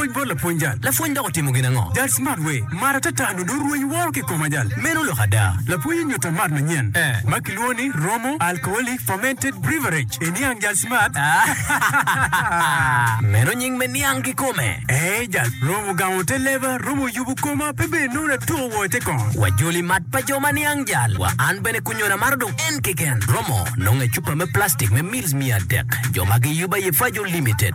Pwony bot lapwony jal. Lapwony dok otimo gin ango? Jal smart we. Mar atata nyo dong rweny woro ki kom ajal. Meno lok ada. Lapwony onyuta mat manyen eh, ma kilwongo ni Romo Alcoholic Fermented Breverage e niang jal smart ah. Meno nying me niang kikome eh jal. Romo gamo te leba, romo yubo koma pe bed nongo natuko woko ite kong. Wa joli mat pa jo ma niang jal wa an bene kunyona maro dong en keken. Romo nongo e cupa me plastic me mils miya adek. Jo ma giyuba ye Fajo Limited.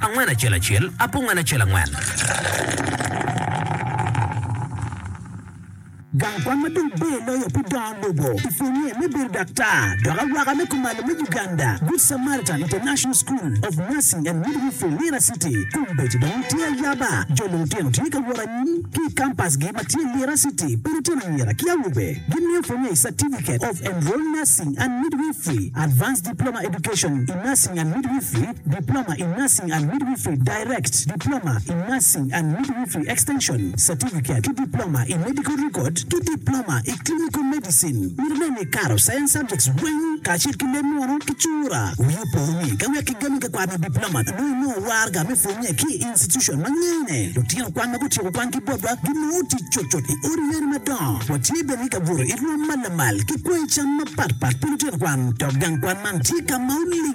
Angwen acel acel, apungen acel angwen. Gang kwan ma dong ber loyo pi dongo lobo i pwonnye me bedo daktar dok awaka me kumalo me Uganda, Good Samaritan International School of Nursing and Midwifery, Lira City, kombeddi dong tye ayaba. Jo lulutino tye ka wot anyim ki i kampasgi ma tye Lira City pa lutino anyira ki awobe. Gimiyo pwonnye i Certificate of Enrolled Nursing and Midwifery, Advanced Diploma Education in Nursing and Midwifery, Diploma in Nursing and Midwifery, Direct, Diploma in Nursing and Midwifery Extension, Certificate, ki Diploma i Medical Record ki Diploma i Clinical Medicine. Mito nen ni ikato Science Subjects weng kacel ki leb munu ki cura. Wi opo ni ka wek kigami ka kwaro me Diploma nongo inongo warga me pwonye ki i institution ma ngene lutino kwan ma gutyeko kwan ki botwa ginongo tic cutcut i odi yeni madongo. Watye bene ki ka buto i rwom ma lamal ki kwanyi cam mapatpat pi lutino kwan dok gang kwan man tye ka ma oling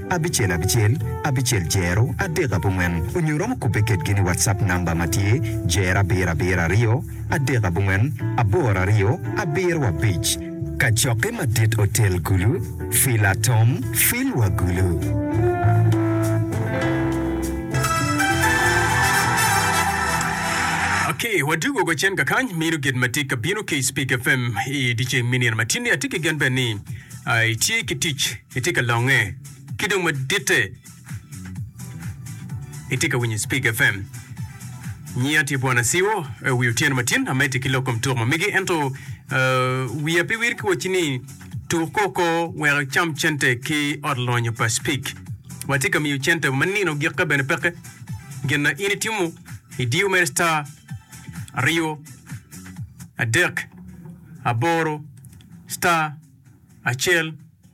abicel abicel abicel jero adek abongwen onyo iromo kubbe kedgi ni WhatsApp number ma tye jero abiro abiro aryo adek abongwen aboro aryo abiro abic. Kacokke madit otel gulu, fil atom, fil wa gulu. Ok wadug wa wacen kakany mino gin matye kabino ki i Speak FM i diceng me nino matini atye ki gen bene ni itye ki tic Itye ka longe ki dong maditte. Itye ka winyo Speak FM. Nyiya tye Bwana Siwo, eh, wi otyeno matin amedde ki lok kom tuk ma mege ento eh, wiya pe wir ki wacci ni tuk koko wek icam cente ki ot lonyo pa Speak. Watye ka miyo cente ma nino gikke bene peke. Gin na in itimo, idiyo mere star aryo adek aboro star acel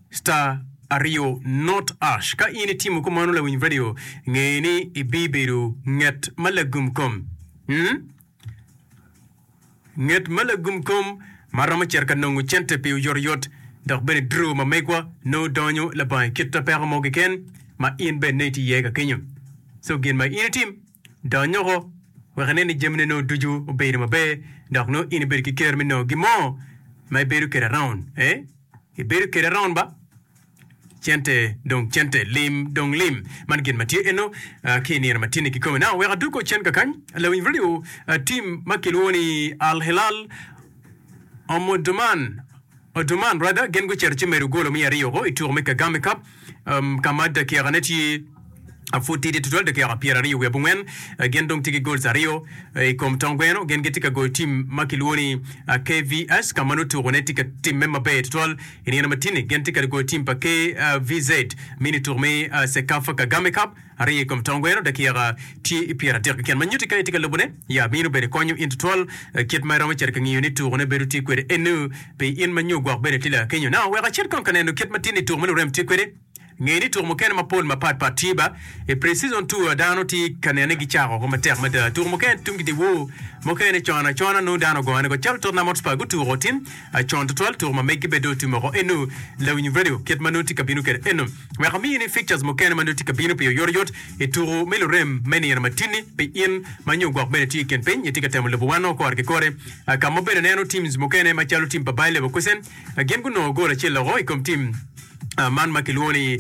star aryo not ash. Ka in itimo kumano lawiny radio nge ni ibibedo nget ma lagum kom. Hmm? Nget ma lagum kom ma romo cito ka nongo cente pi oyotoyot dok bene draw ma megwa nongo donyo labongo i kit apeko mo keken ma in bene nongo itye iye ka kenyo. So gin ma in itim. Dony oko, wek ine ni jamine nongo ducu obedo maber, dok nongo in ibedo ki ker me nongo gin mo ma ibedo kwede araun. Ee, ibedo kwede araun ba? Cente dong cente, lim dong lim. Man gin ma tye eno ki i nino matinni kikome. Now, wek adog kong cen kakany, lawiny redio, tim ma kilwongo ni Al Hilal Omdurman, Omdurman rather, gin gucito ci medo golo me aryo oko i tuko me Kagame Cup. ka ma dakikane tye pud tidi tutwal, dakika pyeraryo wiye abongwen, gin dong tye ki goals aryo i kom tong gweno. Gin gitye ka goyo tim ma kilwongo ni KVS ka ma nongo tuko ne tye ka timme maber tutwal i nino ma tini. Gin tye ka goyo tim pa KVZ mini tuko me Sekafa Kagame Cup. Ariyo i kom tong gweno dakika tye i pyeradek keken ma nyuti ka itye ka lubone ya bino bedo konyo in tutwal kit ma iromo cito ka ngiyo ni tuko ne bedo tye kwede eno pi in ma nyo gwok bene tye lakenyo now wek acit kong ka neno kit ma tini tuko me lurem tye kwede nge ni tuko mukene mapol mapat pat tye ba i pre-season tour dano tye ka nene gi cako oko matek mada tuko mukene tum gidi woo mukene con acona nongo dano ogongo ne go calo tottenham hotspur gutuko otim con tutwal tuko ma megi bene dong otum oko eno lawiny radio kit ma nongo tye ka bino kwede eno. wek omiyi ni fixtures mukene ma nongo tye ka bino pi oyotoyot i tuku me lurem me nino matini pi in ma nyo gwok bene tye i kin piny itye ka temo lubo wano kore ki kore ka mo bene neno teams mukene ma calo team pa Bayer Leverkusen gin gunongo goal acel loko i kom team man ma kilwongo ni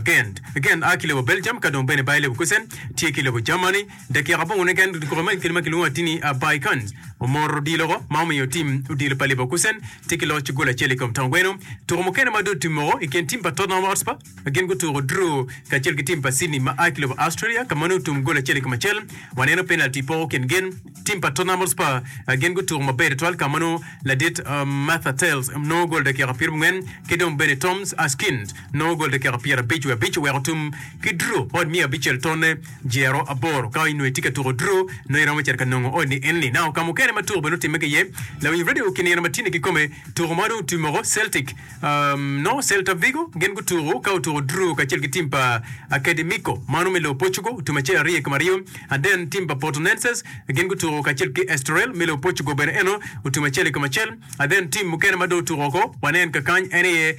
Gent. Gent a ki lobo Belgium ka dong bene Bayer Leverkusen tye ki lobo Germany. Dakika abongo niken lutukuka ma i kine ma kilwongo atini Baikans omoro odiloko ma omiyo tim odilo pa Leverkusen tye ki loc gol acel i kom tong gweno. Tuko mukene ma dong otim moko i kin tim pa Tottenham Hotspur gin gutuko draw kacel ki tim pa Sydney ma a ki lobo Australia ka ma nongo otum gol acel i kom acel. Waneno penalti poko kin gin. Tim pa Tottenham Hotspur gin gutuko maber tutwal ka ma nongo ladit Merthyr Thelsz nongo gol dakika pyerabongwen ki dong bene Toms Askind nongo gol dakika pyerabic wiye abic oweko otum ki draw bot miya abicel tonne. Jero aboro. Ka inongo itye ka tuko dru, nongo iromo cito ka nongo odi enni. Naka ka mukene ma tuko bene otimme ki iye, lawiny radio kinino ma tye-ni kikome, tuko ma dong otwi moko Celtic, um, nongo Celta Vigo, gin gutuko ka otuko dru kacel ki tim pa Academico, mano me lobo Portugal, tum acel arye ki maryo, and then tim pa Portonenses, gin gutuko kacel ki Estoril me lobo Portugal bene eno otum acel i kom acel, and then tim mukene ma dong otuko oko, wanen kakany, en aye.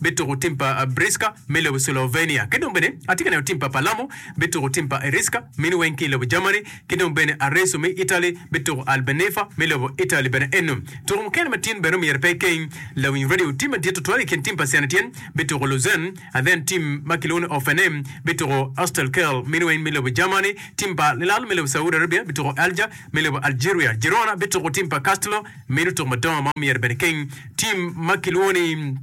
bituko tim pa Briska me lobo Slovenia, ki dong bene atye ka neno tim pa Palermo bituko tim pa Eriska mini weng ki i lobo Germany, ki dong bene Arezzo me Italy bituko Albeneffa me lobo Italy bene eno. Tuko mukene ma tin bene omyero pe ikeng. Lawiny radio, tim madit tutwal i kin tim pa Saint Etienne bituko Lausanne, and then tim ma kilwongo ni Hoffenheim bituko Astelkerl mini weng me lobo Germany, tim pa Al Hilal me lobo Saudi Arabia bituko Alger me lobo Algeria, Girona bituko tim pa Castelo, Meno tuk madongo ma omyero bene keng. Tim ma kilwongo ni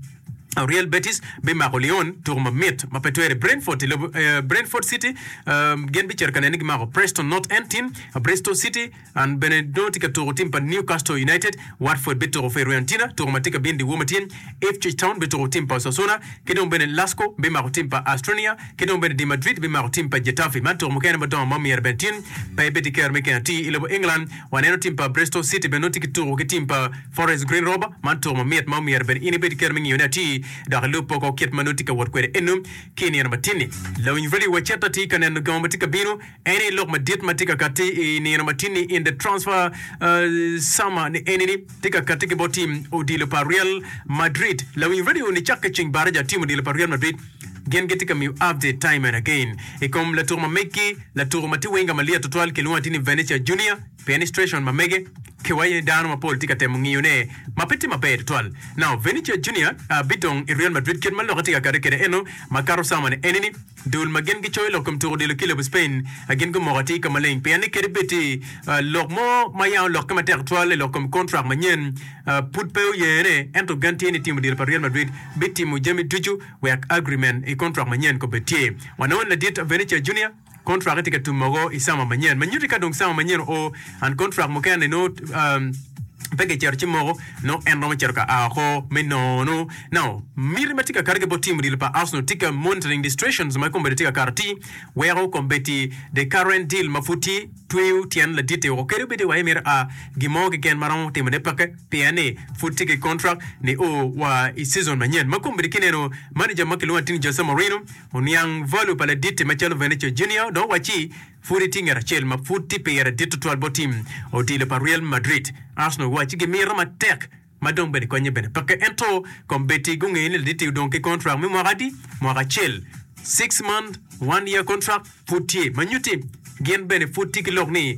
Real Betis bimako Lyon, tuku mamit ma pe twere. Brentford i lobo eh, Brentford City eh, gin bicito ka nene ni gimako Preston North End tim, Bristol City and bene dong tye ka tuku tim pa Newcastle United. Watford bituku Fioruentina, tuku ma tye ka bino dyewor ma tyen. Ipswich Town bituku tim pa Osasuna, ki dong bene Lasko bimako tim pa Astrnia, ki dong bene di Madrid bimako tim pa Getafe. Man tuku mukene madongo ma omyero bene tin, pe ibed ki kero me keng atir i lobo England. Waneno tim pa Bristol City bene nongo tye ki tuko ki tim pa Forest Green Rover. Man tuko mamit ma omyero bene in ibed ki kero me ngiyone atir dok ilub po kong kit ma nongo itye ka wot kwede eno ki i nino matini. Lawiny Radio wa Chet atye ka neno gamo ma tye ka bino. En ni lok madit ma tye ka katti i nino matini in the transfer summer ni eni ni tye ka katti ki bot tim odilo pa Real Madrid. Lawiny Radio ni cakke ceng baraja tim odilo pa Real Madrid. Gin gitye ka miyo update time and again i kom latuk ma meggi, latuku ma tye winga malyet tutwal kilwongo ati ni Venetia Junior, pien ni stration ma mege ki waco ni dano mapol tye ka temo ngiyo ne ma pe tye maber tutwal. Now Venetia Junior bidong i Real Madrid kit ma lokke tye ka kati kede eno ma kato cawa ni eni ni dul ma gin gicoyo lok kom tuku odilo kilabu Spain gin gumoko ati ka maleng pien ni kadi bed tye lok mo ma yam olokke matek tutwal i lok kom contract manyen pud pe oyene, ento gen tye ni tim odiro pa Real Madrid bitimo jami ducu wek agrimen i kontrak manyen kobed tye. Wanongo ni ladit Vinicius Junior kontrake tye ka tum mogo i sama manyen. Ma nyuti ka dong sama manyen oo, and kontrak mukene nongo pe gicito ci moko, nongo en romo cito ka a oko me nono. Now, miti ma tye ka kati ki bot tim odilo pa Arsenal tika monitoring distractions ma kombeddi tye ka kato ti weko kombeddi the current deal ma pud tye? Tweyo tyen ladit-ti woko kadi obed ni wa imito a gin mo keken ma romo timone peke pien ni pud tye ki kontrak ni o wa i cizon manyen. Ma kombeddi ki neno, maneja ma kilwongo atir ni Jose Mourinho oniang value pa ladit-ti macalo Vinicius Junior dong owacci, Pud itye ngat acel ma pud tye pire dit tutwal bot tim odilo pa Real Madrid. Arsenal owacci gimito matek. ma dong bene konye bene peke ento kom Betty gungeyo ni laditi odong ki contract me mwaka adi? Mwaka acel, six month, one year contract pud tye ma nyuti gin bene pud tye ki lok ni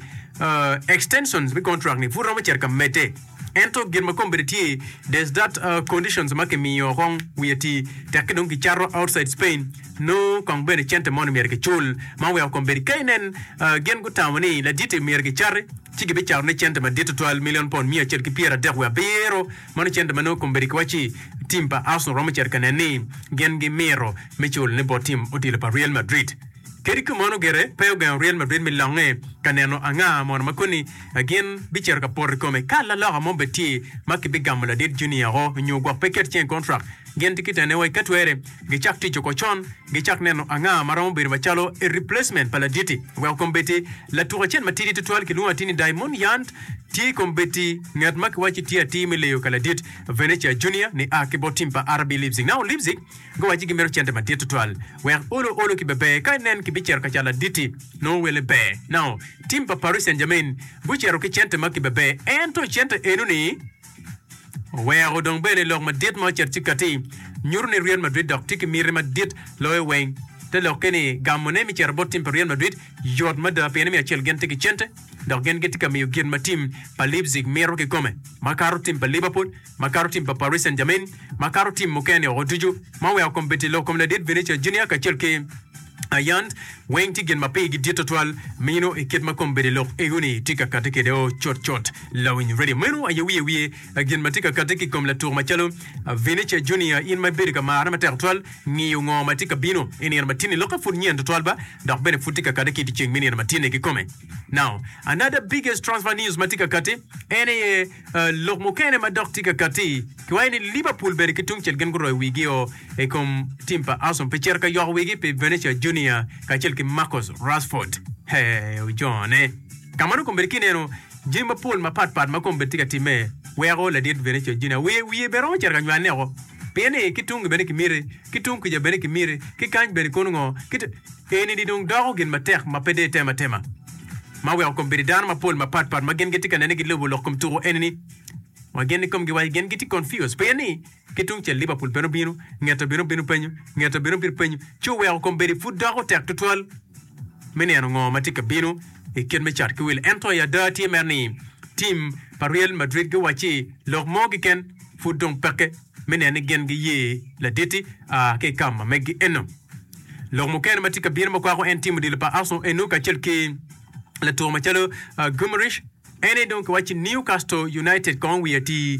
extensions me contract ni pud romo cito ka mede ento gin ma kom bene tye there's that conditions ma kimiyo kong wiye ti tek ki dong ki cato outside Spain noo kong bene cente mo ni myero ki cul ma oweko kom Betty ka inen gin gutamo ni laditi myero ki cati ci gibicatone cente madit tutwal milion pond miya acel ki pyera adek wiye abiro, mano cente ma nongo kombeddi ki wacci tim pa Arsenal romo cito ka nen ni gin gimito me culone bot tim odilo pa Real Madrid. Kadi kamano gire pe ogengo Real Madrid me longe ka neno anga mono ma koni gin bicito ka poto i kome ka laloka mo bed tye ma kibigamo ladit Junior-o nyo gwok pe ket cen kontrak Gin tye ki tene wek ka twere gicak tic oko con, gicak neno anga ma romo bedo macalo i replacement pa laditi. Weko kombeddi, latuk acel matidi tutwal kilwongo atir ni Daimon Yant tye kombeddi ngat ma kiwaco ni tye atir me leyo ka ladit Venetia Junior ni a ki bot tim pa RB Leipzig. Nao Leipzig guwaco ni gimito cente madit tutwal wek olo olo ki beber ka nen kibicito ka cat laditi. Nongo welle ber nao tim pa Paris Saint Germain gucito ki cente ma kibeber ento cente enoni. Oweko dong bene lok madit ma ocito ci kati nyuto ni Real Madrid dok tye ki miti madit loyo weng. Te lokke ni gamone me cito bot tim pa Real Madrid yot mada pien ni me acel gin tye ki cente dok gin gitye ka miyo gin ma tim pa Leipzig mito kikome makato tim pa Liverpool, makato tim pa Paris Saint-Germain, makato tim mukene woko ducu. Ma oweko kombeddi lok kom ladit Vinicius Junior kacel ki. Ayan, weng tye gin ma pigi dit tutwal meno i kit ma kombeddi lok ego-ni tye ka kati kwede-o cutcut. Lawiny redio meno aye wiye wiye gin ma tye ka kati ki i kom latuk macalo Vinecia Junior, In ma ibedo ka marra matek tutwal, ngiyo ngo ma tye ka bino i nino ma tinni? Lokke pud nyen tutwal ba, dok bene pud tye ka kati ki i dyeceng me nino ma tinni kikome. Now, another biggest transfer news ma tye ka kati en aye, Lok mukene ma dok tye ka katti, kiwaco ni Liverpool bene ki tungcel gin guroyo wigi o i kom tim pa Arsenal pi cito ka yoko wigi pi Vinicius Junior kacel ki Marcus Rashford. He, ojone. Ka mano kombeddi ki ineno jami mapol mapat pat ma kombeddi tye ka timme weko ladit Vinicius Junior wiye wiye bene romo cito ka nywanne oko pien ni ki tungi bene kimite, ki tung kuca bene kimite, ki kany bene kono ngo, ki eni ni dong doko gin matek ma pe deyo tema tema. Ma oweko kom bedo dano mapol mapat pat ma gin gitye ka nene gilobo lok kom tuko enini ma gin ikomgi waco gin gitye confused pien ni ki tungcel Liverpool bene obino, ngete bene obino penyo, ngete bene obino penyo ci oweko kom bedo pud doko tek tutwal me neno ngo ma tye ka bino i kit me cat ki wil. Ento i ada tye mere ni team pa Real Madrid giwacci lok mo keken pud dong peke. me neno ni gin giye laditti ka i ka ma megi eno. Lok mukene ma tye ka bino ma kwako en timo dilo pa Arsenal eno kacel ki latuk macalo Guimaraes. Ene dong kiwacci Newcastle United kong wi atir.